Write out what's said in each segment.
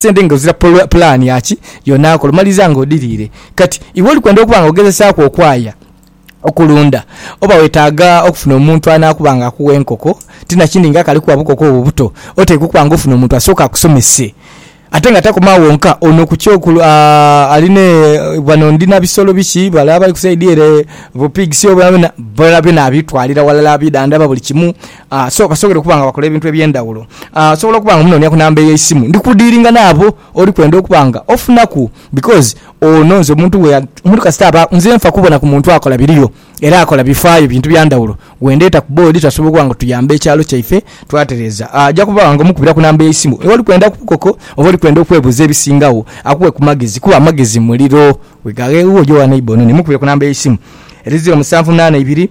sente nga ozira pulaani ya ki y'onaakola omaliriza nga odhiriire. Kati, iwe oli kwenda okuba nga ogezesaaku okwaya okulunda, oba weetaaga okufuna omuntu anaakuba nga akuwa enkoko. Ti na kindi nga akali kuwa bukoko obwo buto, oteekwa okuba nga ofuna omuntu asooke akusomese. Ate nga takoma agho wonka, ono ku kyo ku, a, ali ne, ghano ndi na bisolo biki, bale abali ku saidi ere bu pigs oba byona, byona abitwalira ghalala, abidhandhaba buli kimu. A, so kasongere okuba nga wakola ebintu eby'endhawulo. A, osobola okuba nga omunoonia ku namba ey'eisimu ndi kudiiringa n'abo oli kwenda okuba nga ofunaku because ono nze omuntu gwe, omuntu kasita aba, nze nfa kubona ku muntu akola biriyo era akola bifaayo bintu bya ndhawulo gwe ndeeta ku boodi twasobola okuba nga tuyamba ekyalo kyaife twatereeza. A, aja kuba nga omukubira ku namba ey'eisimu oli kwenda ku bukoko oba oli kwenda okwebuuza ebisingagho akuwe ku magezi kuba amagezi muliro. Weghaghe, oja owa neighbour ono ne mukubire ku namba ey'eisimu. Erize omusanvu munaana ibiri.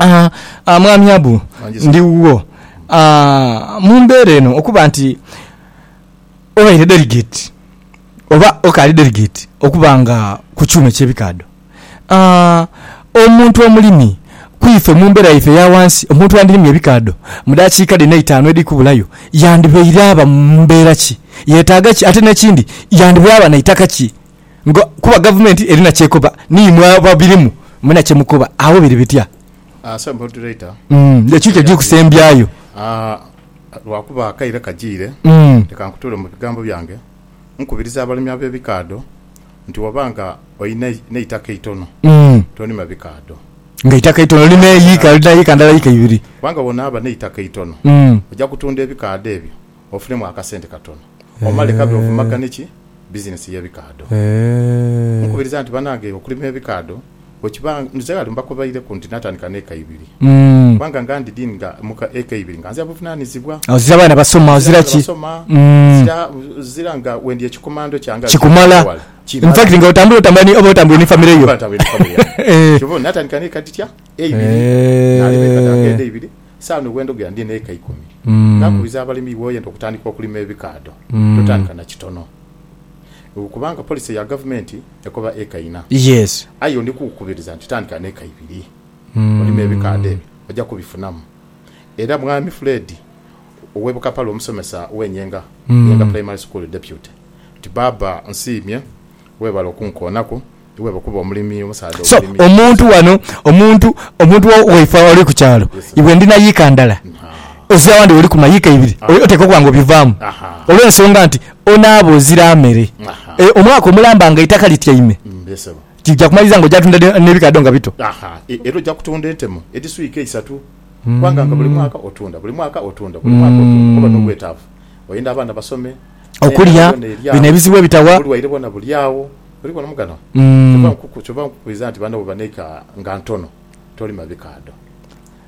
Aa, aa, Mwami Abu, ndi wuwo. Aa, mu mbeera eno, okuba nti obaire delegate, oba okaali delegate, okuba nga ku kyuma eky'ebikaadho. Aa, omuntu omulimi, ku ife mu mbeera yaife eya ghansi, omuntu andirimye ebikaadho mu daakiika dhino eitaanu edhiri kubulayo, yandibaire aba mu mbeera ki? Yetaaga ki? Ate n'ekindi, yandibaire aba na itaka ki? nga kuba gavumenti erina kyekoba ni imwe ababirimu mwena kyemukoba agho biri bitya? Sir Moderator, Ekintu kyo kusembyayo. Lwakuba akaire kajiire, leka nkutuule mu bigambo byange nkubirize abalimi ab'ebikaadho nti waba nga olina n'eitaka eitono tonima bikaadho. Nga eitaka eitono lima eyiika, olina yiika ndala, yiika ibiri. Kubanga bwonaaba n'eitaka eitono oja kutunda ebikaadho ebyo Ofunemu akasente katono omale kabe ovumagane ki bizinesi y'ebikaadho. Nkukubiriza nti banange okulima ebikaadho bwekiba, nze ghale mbakobaireku nti natandika n'eka ibiri kubanga nga ndi dini nga mu eka ibiri nga nzira buvunanizibwa. Ozira abaana basoma, ozira ki? Ozira nga wendi ekikomando kyange kikumala, in fact nga otambula otambula oba otambula ni famire yo. Kyova obona natandika n'eka dhitya? Eibiri. Nalima eka dhange edho eibiri. Saanu bwendhogera ndi n'eka ikumi. Nakubiriza abalimi bwoyenda okutandika okulima ebikaadho totandika na kitono kubanga policy ya gavumenti ekoba eka ina aye yo ndikukukubiriza nti tandika n'eka ibiri olime ebikaadho ebyo oja kubifunamu era Mwami Fred ow'e Bukapalu omusomesa w'e Nyenga, Nyenga Primary School Deputy, nti Baaba nsiimye webale okunkoonaku. So omuntu wano omuntu omuntu waife oli kukyalo iwe ndi na yiika ndala ozira awandi woli kuma yiika ibiri oteekwa okuba nga obivaamu olwensonga nti onaaba ozira mere omwaka omulamba nga eitaka lityaime kija kumaliriza nga ojatunda nebikaadho nga bito era oja kutunda entemu edhiswiika isatu kubanga nga buli mwaka otunda buli mwaka otunda buli mwaka otunda oba nobwetaavu oyenda abaana basome okulya bino ebizibu ebitawa obulwaire bwona bulyagho. Oli bona muganwa? Kyova nkukubiriza nti banno bwebaneika nga ntono tolima bikaadho.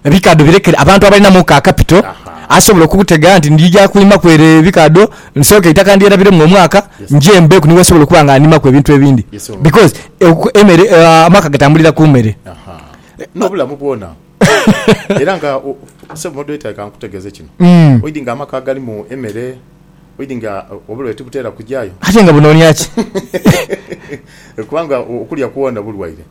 Ebikaadho birekere abantu abalinamu ka kapito asobola okubutega nti ndija kulimaku ere ebikaadho nsooke eitaka ndyerabiremu omwaka nje mbeeku ni wensobola okuba nga ndimaku ebintu ebindi because emere amaka gatambulira ku mere. N'obulamu bwona era nga Ssebo Moderator leka nkutegeeze kino oidhi nga amaka agalimu emere. Oidhi nga obulwaire tibutera kujayo. Aye nga bunonia ki? Kubanga okulya kwona bulwaire.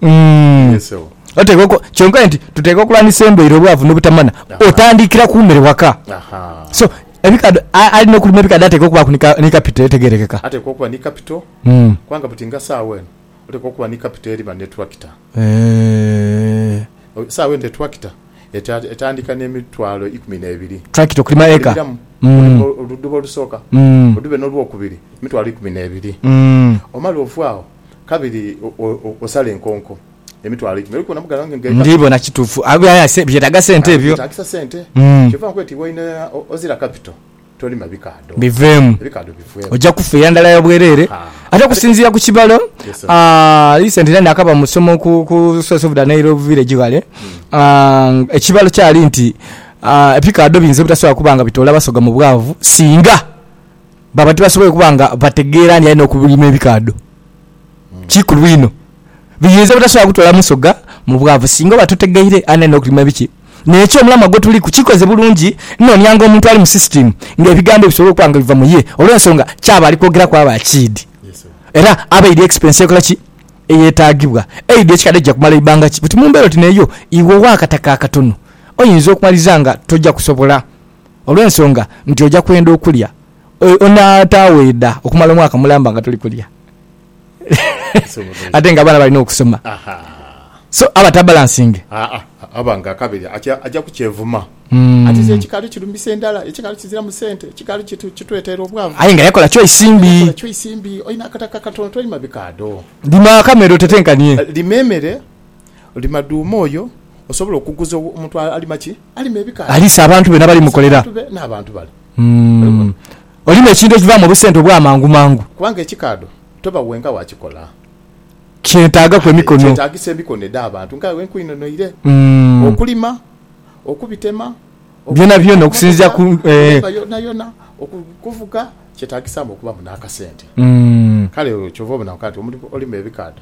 Yes ewo. Oteekwa oku, kyonka nti tuteekwa okulwanisa endwaire, obwavu n'obutamana. Otandikira ku mere waka. So, ebikadho, alina okulima ebikadho ateekwa okubaaku ni ka, ni kapito etegerekeka. Ateekwa okuba ni kapito, kubanga buti nga saawa eno. Olekwa okuba ni kapito eriba ne tulakita. Eeh. Sawa ente tulakita etandika ne mitwalo ikumi nebiri. Tulakita okulima eka. Okulima oluduba olusooka, odube nolwokubiri mitwalo ikumi nebiri. Omale ove agho kabiri osale enkonko emitwalo ikumi. Olikubona mughala wange nga eka. Ndibona kitufu aye byetaga sente ebyo. Aye byetagisa sente. Kyova nkweta iwe oyina ozira kapito. biveemu. Oja kufa eyandala ya bwerere. Ate okusinzira ku kibalo, recently nakaba mu somo ku source of the Nile village ghale, ekibalo kyali nti ebikaadho biyinza obutasobola kuba nga bitoola basoga mu bwavu singa baba tibasoboire kuba nga bategeera nti aye nokulima ebikaadho. kikulu inho. Biyinza obutasobola kutwala musoga mu bwavu singa oba tutegeire ani alina okulima biki. N'ekyo omulamwa gwe tuliku kikoze bulungi noonianga omuntu ali mu sisitiimu ng'ebigambo bisobola okuba nga biva mu ye olw'ensonga ky'aba ali kwogeraku aba akiidhi era aba aidhi expense ekola ki? eyetaagibwa. Aidhi ekikadho kija kumala ibanga ki? Buti mu mbeera oti n'eyo, iwe ow'akataka akatono oyinza okumaliza nga toja kusobola olw'ensonga nti oja kwenda okulya. Onaataweeda okumala omwaka mulamba nga toli kulya? ate nga abaana bali n'okusoma so aba tabalansinge. Aa aba nga akabiri aja kukyevuma hmm. ati nze ekikaali kirumisa endala, ekikaali kiziramu sente, ekikaali kitweteera obwavu. Aye nga yakola choice mbi. Yakola choice mbi. Olina akataka katono tolima bikaadho. Lima akamere otetenkanie. Eh, lima emere, lima duuma oyo osobola okuguza omuntu alima ki? Alima ebikaali. Aliisa abantu be nabali mukolera. N'abantu bale. Hmm. Olina ekintu ekivaamu obusente obw'amangumangu? Kubanga ekikaadho toba wenka wakikola. Kyetaagaku Aye emikono. kyetaagisa emikono edh'abantu nga iwe nkwinonoire okulima, okubitema, Byonabyona okuvuga okusinziira emmotoka, ku, eeh. kulemba yonayona, oku, kuvuga, kyetaagisaamu okubamu n'akasente. Kale olwo kyova obona weka nti omuntu olima ebikaadho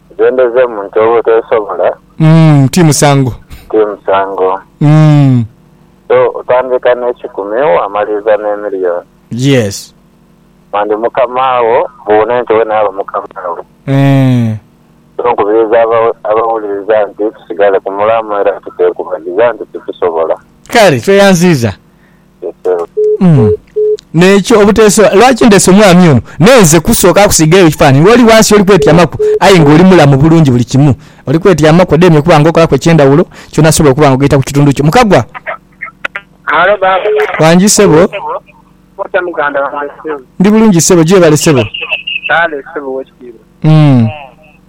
Ghendhezemu nti olwo teesobola. Umm ti musango. Ti musango. Umm. So otandika n'ekikumi waamaliriza n'emiliyoni. Yes. Mandi mukama wo buune nti we naaba mukama we. Eeh. So nkubiriza abawuliriza nti tusigale ku mulamu era tuteekubagiza nti tukisobola. Kale tweyanziiza N'ekyo obuteesobola. Lwaki ndese omwami ono? N'enze kusooka kusiigayo ekifaananyi. Ng'oli ghansi oli kwetyamaku, aye ng'oli mulamu bulungi buli kimu. Oli kwetyamaku, odheemye okuba ng'okolaku eky'endhawulo, kyona asobola okuba ng'ogaita ku kitundu kyo. Mukagwa! Halo baaba. Wangi ssebo. Otya muganda wange ssebo? Ndi bulungi ssebo. Gyebale ssebo. Kale ssebo ow'ekitiibwa.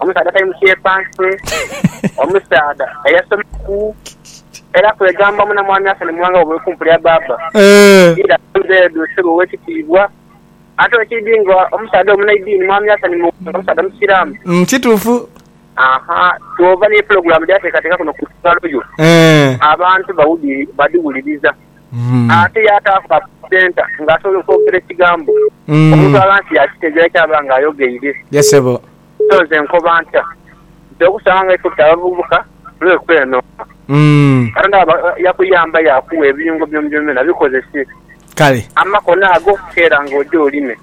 omusaadha atali musyepanse, omusaadha eyasomaku era kwegamba muna Mwami Hassan Muwanga Wabuwe ku mpulira Baaba Ira Nzeedu Ssebo ow'ekitiibwa. Ate bwe kiri nga omusaadha omunaidiini, Mwami Hassan Muwanga musaadha Musiraamu. Umm kituufu. Aha twova ni pulogulaamu dh'ateekateeka kuno ku Lukalodho abantu badhiwuliriza. ate yaataaku ka presenter nga asobola okwogera ekigambo omuntu aba nti yaakitegeera ky'aba nga ayogeire. So nze nkoba ntya nti okusanga nga iffe tuli abavubuka tuleme kwenooka. Katonda bwaba yakuyamba yaakuwa ebiyungo byonabyona bikozese amakono ago okukeera nga oja olime.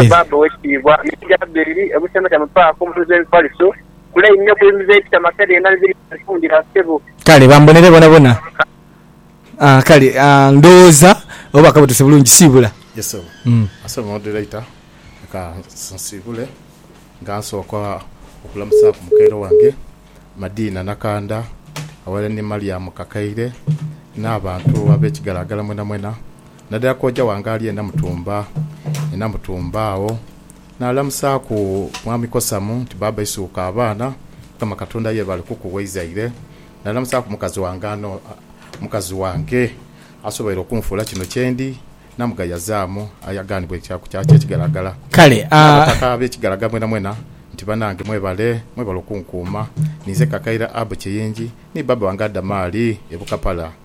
Bwetyo bbaabba ow'ekitiibwa Mick Jaberi e Busemeta mu paaka omutuuze Mifaliso. Kula inho ku inze ekita masa byona bibiri byanfundira ssebo. Kale bambonere bonabona aah kale aah ndhowooza oba bakaba otuuse bulungi siibula. Yes sebo asebo moderator leka nsiibule nga nsooka okulamusaaku mukaire wange Madiina Nakandha aghalala ni Mariam Kakaire n'abantu ab'ekigalagala mwenamwena nadala kooja wange ali e Namutumba e Namutumba agho. Naalamusaaku Mwami Kosamu nti, Baaba Isuuka abaana, Mukama Katonda yeebale kukuwa eizaire. Naalamusaaku mukazi wange ano, mukazi wange asoboire okunfuula kino kyendi, namugayazaamu aye agaanibwa ekyaku kyaki ekigaragala. Kale a. N'abataka ab'ekigaragala mwenamwena nti, Banange mwebale, mwebale okunkuuma. Ninze kakaire Abu Kiyingi ni baaba wange Adamaali e Bukapala.